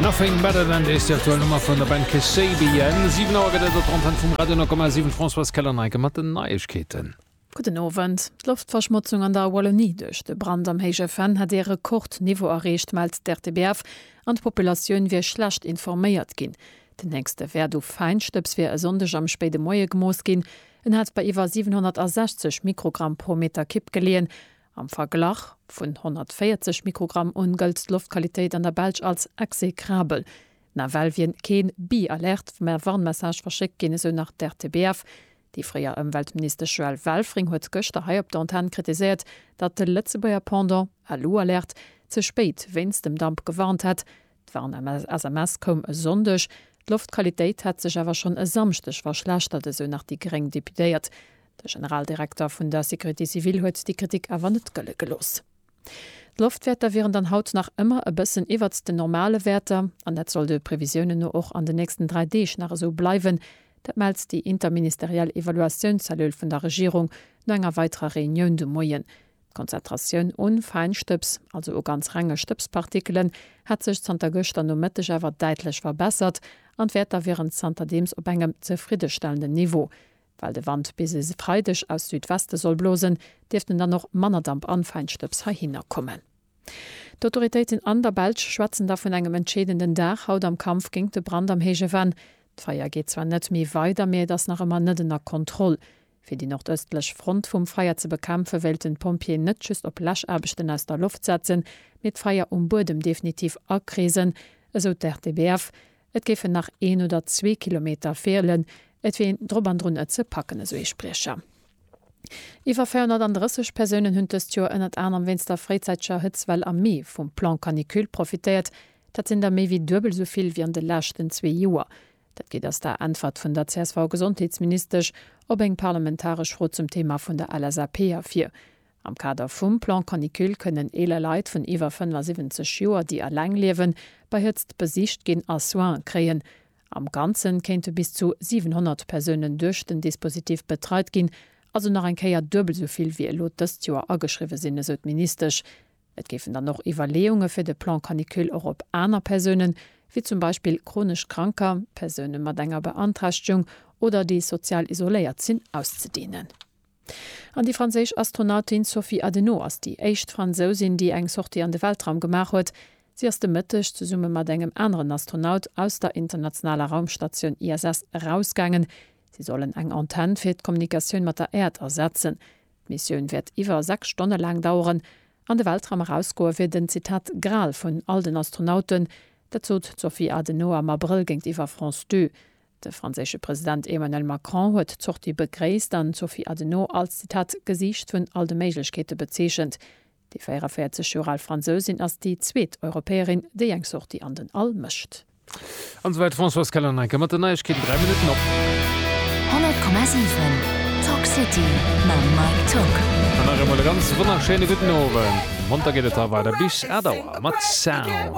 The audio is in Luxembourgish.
Nothing better than this, déi aktuell Nummer vun der Band Kasabian. 7 Auer gëtt et op der Antenn vum Radio 9,7. D'Françoise Keller-Neike mat den Neiegkeeten. Gudden Owend. D'Loftverschmotzung an der Wallonie duerch de Brand am Héije Venn hätt ee Rekordniveau erreecht, mellt d'RTBF, an d'Populatioun wier schlecht informéiert ginn. Den héchste Wäert u Feinstëbs wier e Sonndeg am spéide Moie gemooss ginn. En hätt bei iwwer 760 Mikrogramm pro Meter Kipp geleeën Am Verglach vun 140 Mikrogramm un gëllt d'Loftqualitéit an der Belsch als exekrabel. Nawell wier kee Bee alerte vum Air Warnmessage verschéckt ginn, esou nach d'RTBF. Déi fréier Ëmweltministesch Joëlle Welfring huet gëschter hei op der Antenn kritiséiert, datt de Lëtzebuerger Pendant, Alu Alerte, ze spéit wéinst dem Damp gewarnt hätt. D'Warn-SMS koum e Sonndeg, d'Loftqualitéit hätt sech awer schonn e Samschdeg verschlechtert, esou nach déi gréng Deputéiert. De Generaldirekter vun der Sécurité civile huet déi Kritik awer net gëlle gelooss. D'Loftwäerter wieren dann haut nach ëmmer e bëssen iwwert den normale Wäerter an dat soll de Previsiounen no och an den nächsten dräi Deeg nach esou bleiwen. Dat mellt déi interministeriell Evaluatiounscellule vun der Regierung no enger weiterer Reunioun de Moien. D'Konzentratioun u Feinstëbs, also u ganz renge Stëbspartikelen, hätt sech zanter gëschter Nomëtteg awer däitlech verbessert an d'Wäerter wieren zanterdeems op engem zefriddestellenden Niveau. Well de Wand bis e Freideg aus Südweste soll blosen, dierften dann och manner Damp an Feinstëbs heihinner kommen. D'Autoritéiten an der Belsch schwätzen da vun engem entscheedenden Dag haut am Kampf géint de Brand am Héije Venn. D'Feier geet zwar net méi weider, mee et ass nach ëmmer net ënner Kontroll. Fir déi nordëstlech Front vum Feier ze bekämpfen, wéilten d'Pompjeeën net just op Läschaarbechten aus der Loft setzen, mee d'Feier um Buedem definitiv akreesen, esou d'RTBF. Et géifen nach een oder zwee Kilometer feelen, et wier een drop an drun et ze packen, esou ee Spriecher. Iwwer 430 Persounen hunn dëst Joer ënnert anerem wéinst der fréizäiteger Hëtzwell am Mee vum Plan Canicule profitéiert. Dat sinn der méi wéi duebel esou vill wéi an de leschten zwee Joer. Dat geet aus der Äntwert vun der CSV-Gesondheetsministesch op eng parlamentaresch Fro zum Thema vun der LSAP ervir. Am Kader vum Plan Canicule kënnen eeler Leit vun iwwer 75 Joer, déi eleng liewen, bei Hëtzt besicht ginn a Soine kréien. Am Ganze kéinte bis zu 700 Persounen duerch den Dispositif betreit ginn, also nach eng Kéier duebel esou vill, wéi elo dëst Joer ageschriwwe sinn, esou d'Ministesch. Et géifen dann och Iwwerleeunge fir de Plan canicule och op aner Persounen, wéi zum Beispill chronesch Kranker, Persoune mat enger Beanträchtegung oder déi sozial isoléiert sinn, auszedehnen. An déi franséisch Astronautin Sophie Adenau ass déi éischt Fransousin, déi eng Sortie an de Weltraum gemaach huet. Si ass de Mëtteg zesumme mat engem aneren Astronaut aus der internationaler Raumstatioun ISS erausgaangen. Si sollen eng Antenn fir d'Kommunikatioun mat der Äerd ersetzen. D'Missioun wäert iwwer 6 Stonne laang daueren. An de Weltraum erausgoe wier den, Zitat, Gral vun all den Astronauten. Dat sot d'Sophie Adenauer am Abrëll géintiwwer France Deux. De franséische President Emmanuel Macron huet d'Sortie begréisst an d'Sophie Adenauer als, Zitat, Gesiicht vun all de Méiglechkeete bezeechent. Déi 44 Joer al Fransousin ass déi zweet Europäerin, déi eng Sortie an den All mécht. An esou wäit d'Françoise Keller-Neiker mat den Neiegkeeten 3 Minutten op. 100,7 Talk City mam Mike Tock. An nach eemol e ganz wonnerschéine gudden Owend. Monter geet et da weider bis 8 Auer mat Sound.